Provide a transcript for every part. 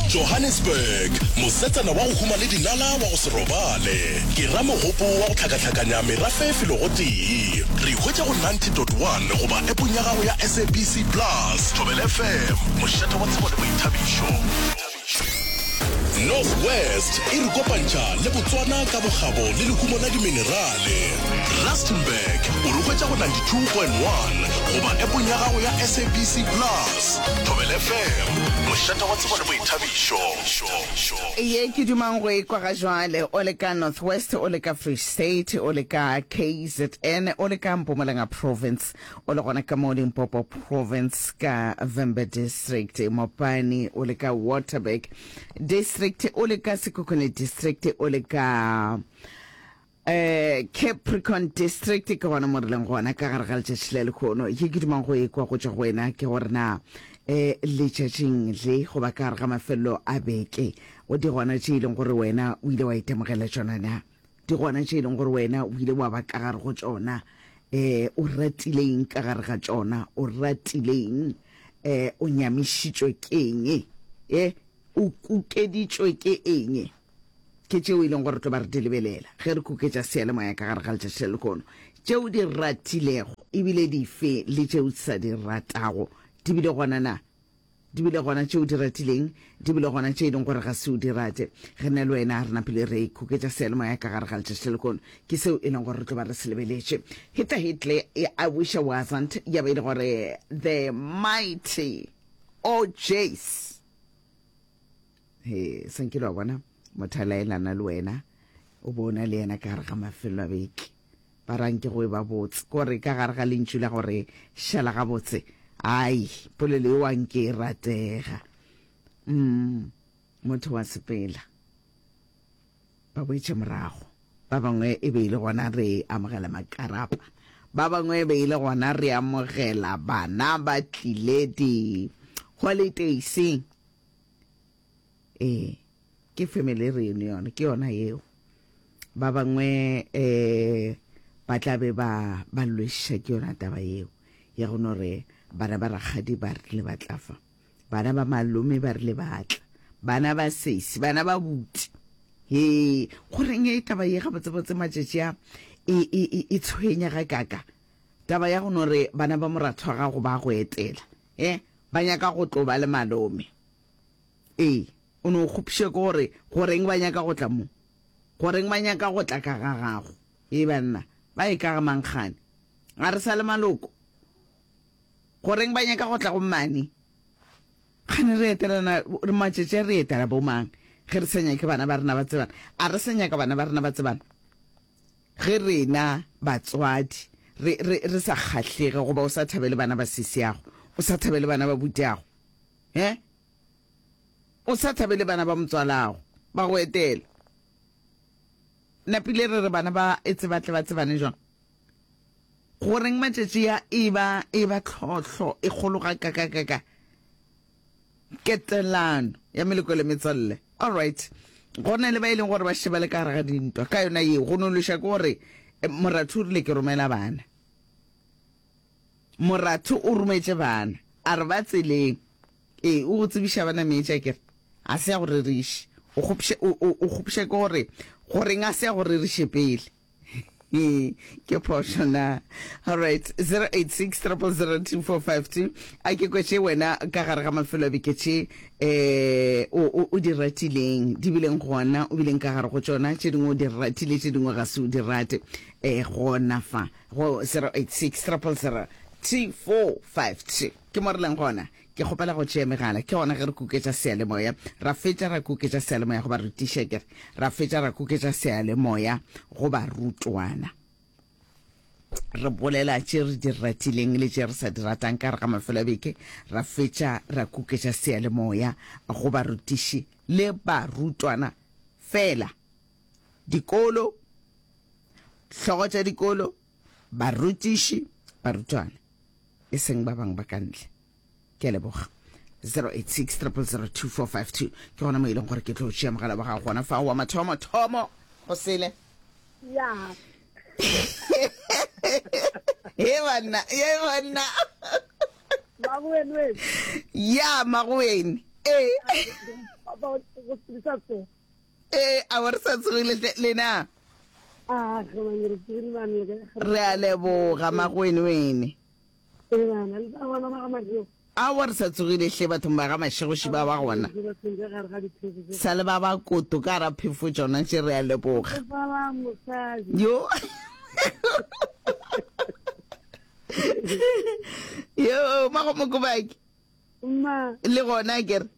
Johannesburg, Mosetsana wa go huma le dinala wa go se robale ke ramogopo wa go hlakahlakanya merafe e felogo tee. Re ihwetše go 90.1 goba appong ya gago ya SABC Plus. Thobela FM, mošate wa tsebo le boithabišo. North West e re kopantšha le Botswana ka bokgabo le lehumo la diminerale. Rustenburg o re hwetša go 92.1 goba appong ya gago ya SABC Plus. Thobela FM, mošate wa tsebo le boithabišo. Ye ke dumang go e kwa ga jwale, o le ka North West, o le ka Free State, o le ka KZN, o le ka Mpumalanga Province, o le gona ka mo Limpopo Province ka Vhembe District, Mopani, o le ka Waterberg District, o le ka Sekhukhune District, o le ka Capricorn District, ke gona mo re leng gona ka gare ga letšatši la lekhono. Ye ke dumang go ekwa go tšwa go wena ke gore na um letšatšing le goba ka gare ga mafelelo a beke o di gona tše e leng gore wena o ile wa itemogela tšona na di gona tše e leng gore wena o ile wa ba ka gare go tšona um o ratileng ka gare ga tšona o ratileng um o nyamišitšwe ke eng e o kukeditšwe ke eng Ke tšeo e leng gore re tlo ba re di lebelela ge re kuketša seyalemoya ka gare ga letšatši le lehono. Tšeo di ratilego e bile dife le tšeo di sa di ratago di bile gona na? Di bile gona tšeo di ratileng, di bile gona tše e leng gore ga se o di rate. Re na le wena, re napile re kuketša seyalemoya ka gare ga letšatši le lehono. Ke seo e leng gore re tlo ba re se lebeletše. Hitler, Hitler, I wish I wasn't, ya ba e le gore the mighty, oh jeez. he sankile wa bona motho a laelana le wena o bona le yena ka gare ga mafelelo a beke ba rang ke go e ba botse kore ka gare ga lentšu la gore šala ga botse ai polelo e wang ke e ratega mm motho wa sepela ba boetše morago ba bangwe e be e le gona re amogela makarapa ba bangwe e be e le gona re amogela bana ba tlile di holidayseng ee ke family reunion ke yona yeo ba bangwe eh ba tla be ba ba lwešiša ke yona taba yeo ya go no re bana ba rakgadi ba rile ba tla fa bana ba malome ba rile ba tla bana ba sesi bana ba buti he goreng e taba ye gabotsebotse matšatši a e, e, e, e tshwenya ga kaka taba ya go no re bana ba moratho wa gago ba go etela e ba nyaka go tlo ba le malome ee o no kgopše ke gore goreng ba nyaka go tla mo goreng ba nyaka go tla ka ga gago e banna ba e ka ga mangkgane ga re sa le maloko goreng ba nyaka go tla go mmane kgane re etelana re matšetše re etela bomang ge re sa nyake bana ba rena ba tsebana a re sa nyaka bana ba rena ba tsebana Ge rena batswadi re, re, re sa kgahlege goba o sa thabele bana ba sisiago, o sa thabele bana ba butiago, he, o sa thabele bana ba motswalago, ba go etela. Napile re re bana ba etse ba tle ba tsebane jwang? Goreng matšatši a e ba, e ba tlhohlo e kgolo gakakakaka? Ketelano ya meleko le metswalle. Alright. Go na le ba e leng gore ba šeba le ka gare ga dintwa. Ka yona yeo, go nološa ke gore eh, Moratho o rile ke romela bana. Moratho o rometše bana. A re ba tseleng. Ee, o go tsebiša bana meetša kere. A se ya go reriše. O kgopša ke gore, goreng a se ya go reriše pele. ke phošo na alright 086 000245 a ke kwetše wena ka gare ga mafelo a beke tše um o di ratileng di bileng gona o bileng ka gare go tšona tše dingwe o di ratile tše dingwe ga se o di rate um gona fa go 086 000245 ke mo re leng gona Ke kgopela go tšea megala. Ke gona ge re kuketša seyalemoya. Ra fetša ra kuketša seyalemoya go barutiša, ke re. Ra fetša ra kuketša seyalemoya go barutwana. Re bolela tše re di ratileng le tše re sa di ratang ka gare ga mafelo a beke. Ra fetša ra kuketša seyalemoya go barutiši le barutwana fela. Dikolo, hlogo tša dikolo. Barutiši, barutwana, e seng ba bangwe ba ka ntle. Ke a leboga. 0860002452 ke gona mo e leng gore ke tlo tšea mogala wa gago gona fa wa mathomo thomo go sele ya he banna ye banna magoenwen ya magoen e eh. Ee, a ba re sa tsogile hle lena. Ah, re bane re tsogile bane le ka. Re a leboga magwene wene. Ee bana le ba bona ba ga Mashego. A wa re sa tsogile hle bathong ba ga Mashego shi ba ba gona. Sa le ba ba koto ka ra phefo tsona tše re a leboga. Yo. Yo, mago mokobaki. Mma. Le gona ke re.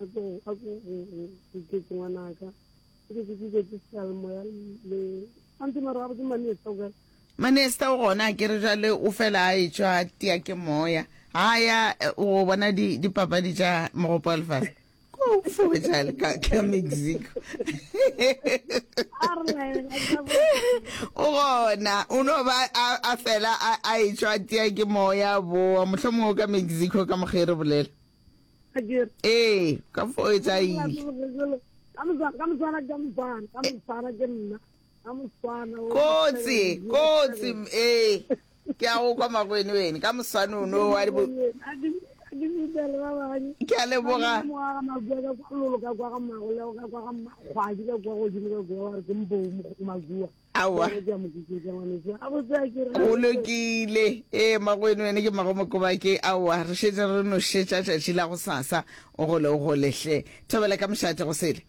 a ko a ko go ke ngwana ka ke ke ke ke salmo ya le ante mara ga botse mane sa ga manesta o gona ke re jale o fela a e tswa tia ke moya ha ya o bona di di papadi tsa mogopo alfas ko fo jale ka ka mexico o gona o no ba a fela a e tswa tia ke moya bo mohlomong ka mexico ka mogere bolela ee ka fo e tsa ile kotsi kotsi ee ke a go kwa magwene wene ka moswane o no wa dibo ke a leboga aowa o lokile ee magweno ene ke magomokobake aowa re šetse re nošetša tšatši la go sasa o gole o golehle thobela ka mošate go sele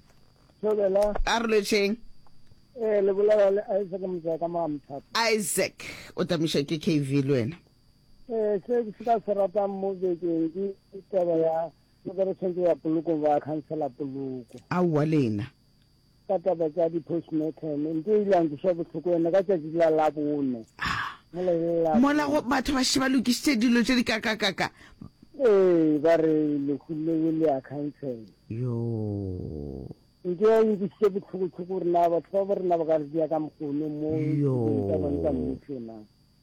a re lwetšheng ee le bolela le isaac motsaya ka maamthata isaac o tamišwa ke kv le wena ee se se ka se ratang mo bekeng ke taba ya lokeretshwantse ya poloko ba khansela poloko aowa lena Ka taba tša di-postmortem, e nto ile ya nkweša bohloko yona ka tšatši la Labone. Mola ile la. Mola go, batho ba še ba lokišitše dilo tše di kakakaka. Ee, ba re lehu leo le a cancel. Yoo. Nto ya nkwešiše bohloko-hloko gore na batho ba bo rena ba ka re dia ka mokgono mo. Yoo. Tša bone tša mmušo na.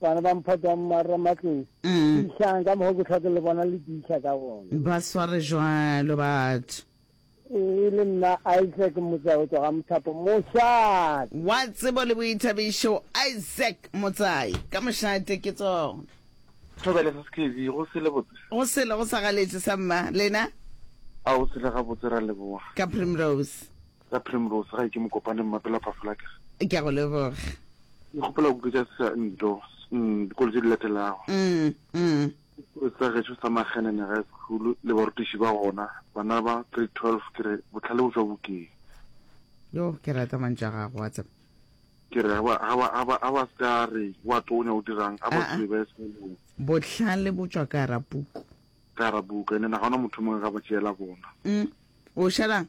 Bana ba mphota mmarra matlong. Tiišang ka mokgwa ke hlwa ke le bona le tiiša ka gona. Ba sware jwalo batho. E le nna Isaac Motsai o tšwa ga Mothapo Mošate. Wa tsebo le boithabišo Isaac Motsai ka Mošate ke tsona. Thobela sa skv, go sele botse? Go sele go sa galetše sa mma, lena? A go sele gabotse, ra leboga. Ka Primrose. Ya Primrose, gae ke Mokopane, Mmapela wa Phafola ke re. Ke a go leboga. Ke kgopela go kutletša sa nto, mm, dikolo tše di latelago. Mm, mm. Sekolo sa gešo sa Magenene High School le barutiši ba gona, bana ba grade 12 ke re bohlale bo tšwa bukeng. Yo, ke rata mantšu a gago, wa tseba. Ke re ga ba, ga ba, ga ba, ga ba se ka re wa tonya o dirang, ga ba Ah, ah. tsebe ba e sekolong. Bohlale bo tšwa ka gara puku. Ka gara buka, ene na ga ona motho o mongwe ga ba tšeela bona. Mm, o šalang?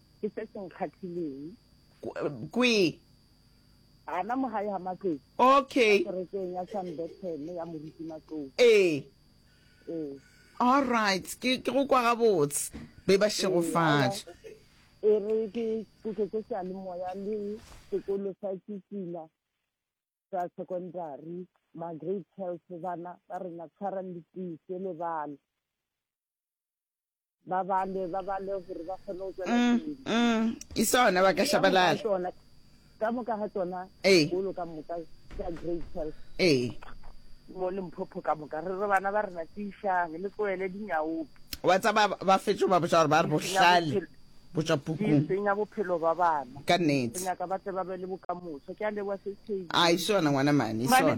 ke se se nkgathileng. Kwi. Ana mo gae ga matlou. Okay. Kerekeng ya San Bethel ya moruti matlou. Ee. Ee. All right. Ke ke go kwa gabotse. Be ba shegofatša. E re ke kuke ke sa le moya le sekolo sa tsitsila sa secondary ma grade 12 bana ba rena tshwarang le tsise le bana ba bale ba bale gore ba kgone go tswela mm, pele mm. e sona ba ka shabalala ka moka ga tsona dikolo ka moka tsa grade twelve ee mo lemphopho ka moka re re bana ba rena tišang le tloele dinyaope wa tsa ba fetso ba botsa gore ba re bohlale botsa pukung senya bophelo ba bana ka nnete nyaka ba tle ba be le bokamoso ke a leboa se se a isona ngwana mane isona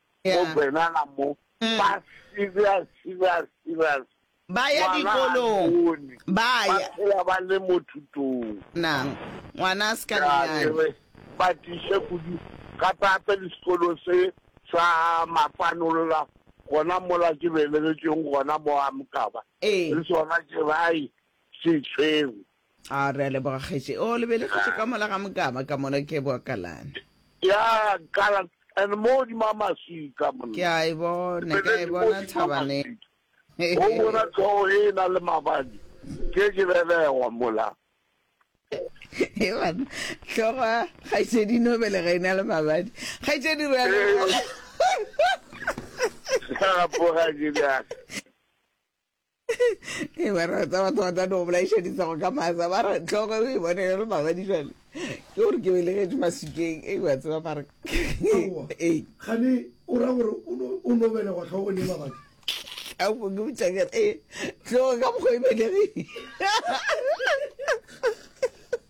Go benana mo ba serious serious serious. Ba ya dikolong ba ya. Ba phela ba le mo thutong. Nang ngwana a se ka nyenyane. Ba tiše kudu gape gape le sekolo se sa Mapanolola gona mola ke belegetšweng gona mo Amkaba le sona ke bai se tshwerwe. A re a leboga kgetši. O lebelegetše ka mola ga mokaba ka mona ke boa kalana. Ya kala and mo di ma maswika monna. Ke a e bona, ke a e bona thabane. O bona tlhogo e na le mabadi ke ke belegwa mola. E bana tlhogo ya kgaitšedi no belega e na le mabadi. Kgaitšedi re a leboga. Sa poga ke ya. e ba re tsa batho ba tla no bolaišeditsa go ka masa ba re tlhogo e bone le mabadi jale ke gore ke belegetše masukeng e ba tseba mare ee gane o ra gore o no belegwa tlhogo le mabadi a go ke botsa ke ee tlhogo ka mokgwa e belegile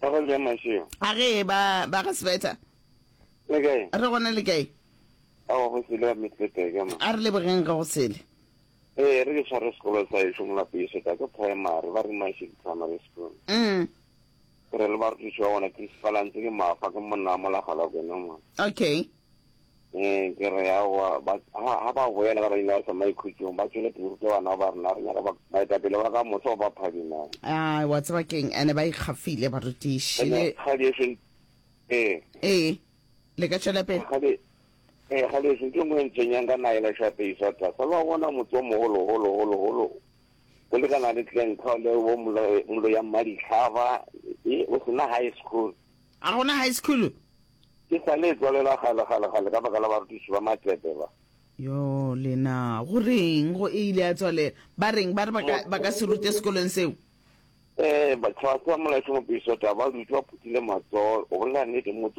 Ba go ja mašeo. A ge ba ba ga sebeta. Le kae? Re gona le kae? A go sele wa metlete ka mo. A re lebogeng ga go sele. Ee, re ke tshware sekolo sa e šomola pese ka ke primary ba re mašhe di primary school. Mm. Re le ba re tšwa ona ke spalantse ke mafa ke monna mo la gala kwena mo. Okay. Ee, ke re aowa, ba, ha, ha ba boela ka badimo ba sa maikhutšong, ba tšwele pele rute bana ba rena, re nyaka ba, baetapele ba ka moso ba ba phadimago. Ai, wa tseba keng, ene ba ikgafile barutiši, le. Kgadi eso, ee. Ee, le ka tšwela pele. Kgadi, ee, kgadi eso, ntho e nngwe e ntshwenyang ka naga yela šape iso a tlase, lo a bona motse o mogolo, golo, golo, golo, o lekana le Glencoe le bo Mlo, Mloya Mmadihlaba, ee, o sena high school. Ga gona high school? E sa le e tswalela kgale, kgale, kgale, ka baka la barutiši ba Matepe ba. Yoo, le na, go reng, go e ile ya tswalela? Ba reng? Ba re ba ka, ba ka se rute sekolong seo? Ee, ba, tlhwahlwa, Molaetšo, Mopiso, taba, ba dutše ba phuthile matsoho. O bolela nnete, motse.